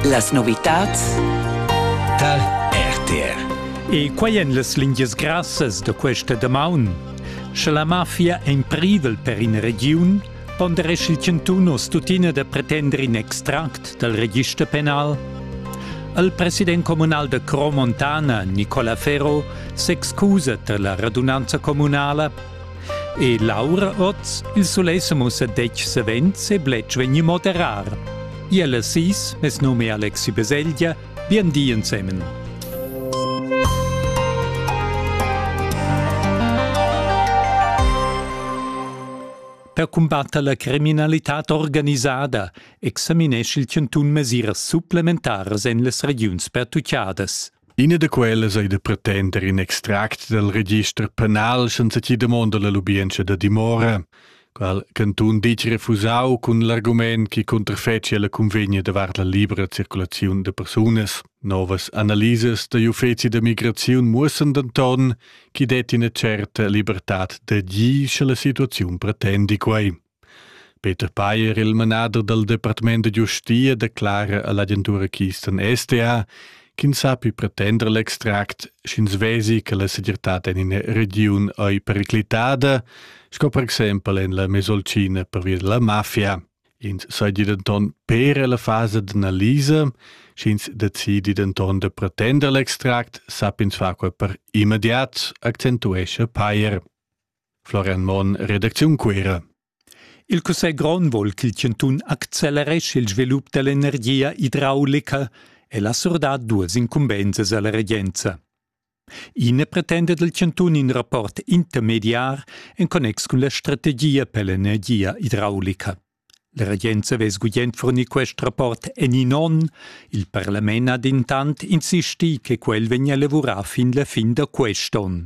Las novitads tar RTR. E quai èn las lingias grassas da questa damaun. Sche la mafia è in privel per in regiun, ponderesch il chantun oz tuttina da pretender in extract dal register penal. Il president communal da Cromontana, Nicola Ferro, s'excusa tar la radunanza communala E Laura oz il sulei se mussa detg savens e bletsch vegni moderar. Iela sis, mes nome è Alexi Beselgia, bien di insemen. Per combatter la criminalità organisada examinesch il Cantun mesiras supplementaras en les regiuns pertuccadas. Ina da quellas ei da pretender in extract dal register penal senza chi damonda la lubientscha da dimora, qual cantun ditg refusau cun l'argument chi cunterfecia la cunvegna davart la libera circulaziun da persunas. Novas analisas dagl uffeci da migraziun muossan denton chi detti ina certa libertad d'agir sche la situaziun pretendi quei. Peter Payer, il manader dal departament da giustia, declara a l'agentura Kisten STA ch'ins sappi pretender l'extract, sch'ins vesi che la segirtad en ina regiun ei periclitada, sco per exempel en la Mesolcina pervia della mafia. Ins seigi denton per la fasa d'analisa, sch'ins decidi denton da pretender l'extract, sapp'ins far quei per immediat, accentuescha Payer. Florian Monn, redacziun Cuera. Il cussegl grond vol ch'il chantun acceleresce il svilup dell'energia idraulica e la surdar duas incumbensas alla regenza. I ne pretenda del chantun in rapport intermediar en connex cun la strategia per l'energia idraulica. La regenza vess gugent fornir quest rapport en in onn, il parlament ha dentant insisti che quel vegnia lavurà fin la fin da quest'onn.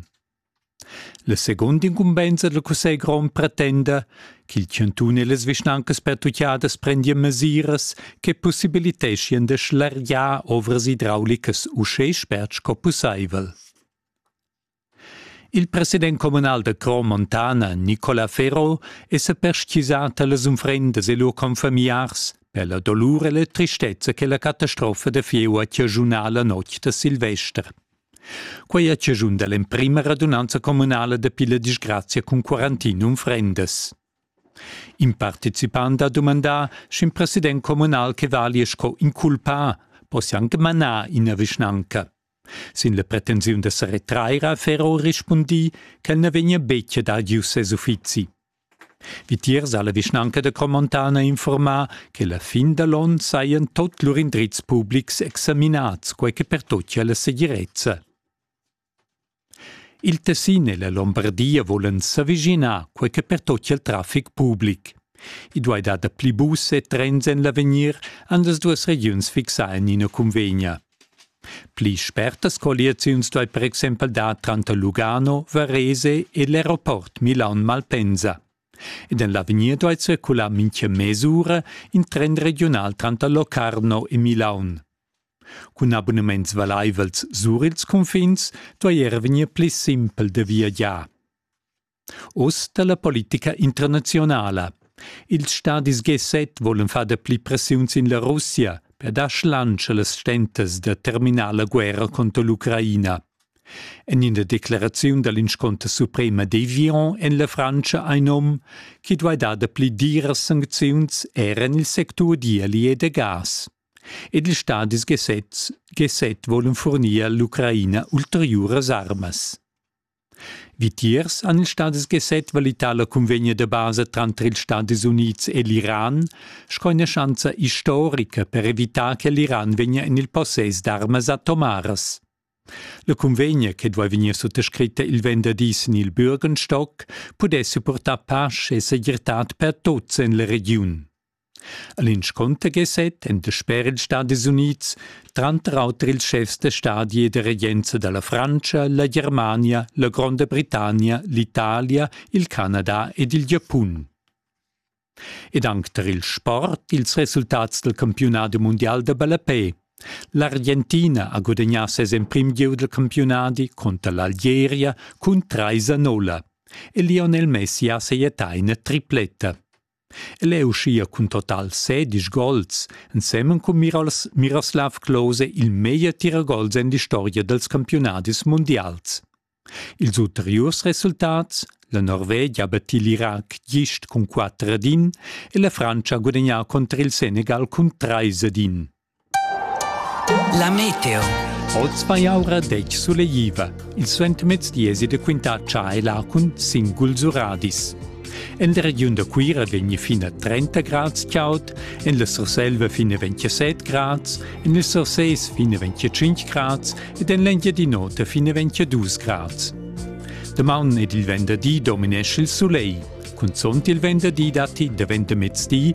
La seguonda incumbenza dal cussegl grond pretenda ch'il chantun e las vischnancas pertuchadas prendian mesiras che pussibiliteschien da schlargiar ovras idraulicas uschè spert sco pussaivel. Il president communal da Cro Montana, Nicola Ferro, è sa perstgisà talas unfrendas e lur confamiars per la dolur e la tristezza che la catastrofa da fieu ha chaschunà la notg da Silvester. Quei ha chaschun dall'emprema radunanza communala dapi la disgrazia cun quarantinum frendas. In participant ha dumandà, sch'in president communal che valia sco inculpà possia anche manar ina vischnanca. Sin la pretensiun da sa retrair ha Ferro rispundì ch'el na vegnia betg ad adiuer ses uffizi. Vitiers ha la vischnanca da Cromontana informà che la fin da l'onn sajan tut lur indrizs publics examinads, quai che pertochia la segirezza. Il Tessin e la Lombardia volan s'avischinar, quai che pertochia il traffic public. I duai dar dapli bus e trens en l'avegnir, han las duas regiuns fixà en ina cunvegna. Pli spertas colliaziuns duai per exempel dar tranter Lugano, Varese e l'aeroport Milan-Malpensa. Ed en l'avegnir duai circular mintga mes'ura in tren regiunal tranter Locarno e Milaun. Cun abunaments valaivels sur ils cunfins duai era vegnir pli simpel da viagiar. Oz dalla politica internazionala. Ils stadis G7 volen far dapli pressiun sin la Russia per dar schlantsch allas stentas da terminar la guerra contro l'Ucraina. En ina declaraziun dall'insconter suprema devion en la Frantscha ein um chi duai dar dapli diras sancziuns era en il sectur d'ieli e da gas. Ed ils stadis G7 G7 volen furnir all'Ucraina ulteriuras armas. Vitiers han ils Stadis Geset valità la cunvegna da basa tranter ils Stadis Unids e l'Iran sco ina schanza istorica per evitar che l'Iran vegnia en il possess d'armas atomaras. La cunvegna, che duai vegnir suttascritta il venderdì sin il Bürgenstock, pudess supportar pace e segirtad per tuts en la regiun. A l'inscunter geset en dasper ils Stadis Unids tranter auter ils schefs da stadi e da regenza da la Frantscha, la Germania, la Gronda Britannia, l'Italia, il Canada ed il Giapun. Ed anc tar il sport ils resultats dal campiunadi mundial da ballapè. L'Argentina ha gudagnà ses emprim gieu dal campiunadi conter l'Algeria cun trais a nolla e Lionel Messi ha sajettà ina tripletta. e leu schia cun total sedisch gols ensemen cun Miros, Miroslav Klose il meglier tiragols en l'historia dals campiunadis mundials. Ils ulteriurs resultats La Norvegia ha battì l'Irac gist cun 4 ad 1 e la Frantscha ha gudagnà contr il Senegal cun 3 ad 1. La meteo. Oz vai aura detg suleiva. Il suentermezdi esi de quintar chai lacun singuls uradis. En der regiun da Cuira vegni fin a 30 grads caud, en la Surselva fin a 27 grads, en il Surses fin a 25 grads ed en l'Engiadinota fin a 22 grads. Damaun ed il venderdi dominesce il soleil. Cunzont il venderdi datti daventa mezdi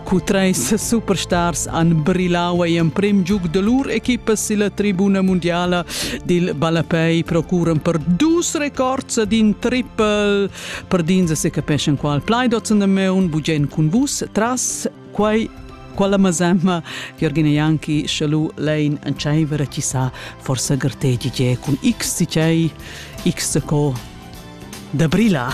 Cu treis superstars han brillau ei emprem giug de lur equipa silla tribuna mundiala dil ballapei procuran per dus records d'in triple per dins se capeschan qual plaidotzen de meun bugen cun vus tras quei quella mazemma Jorgina Janki schalu lein an tscheiver chi sa forsa gartegi ge cun x di tgei x co da brilla.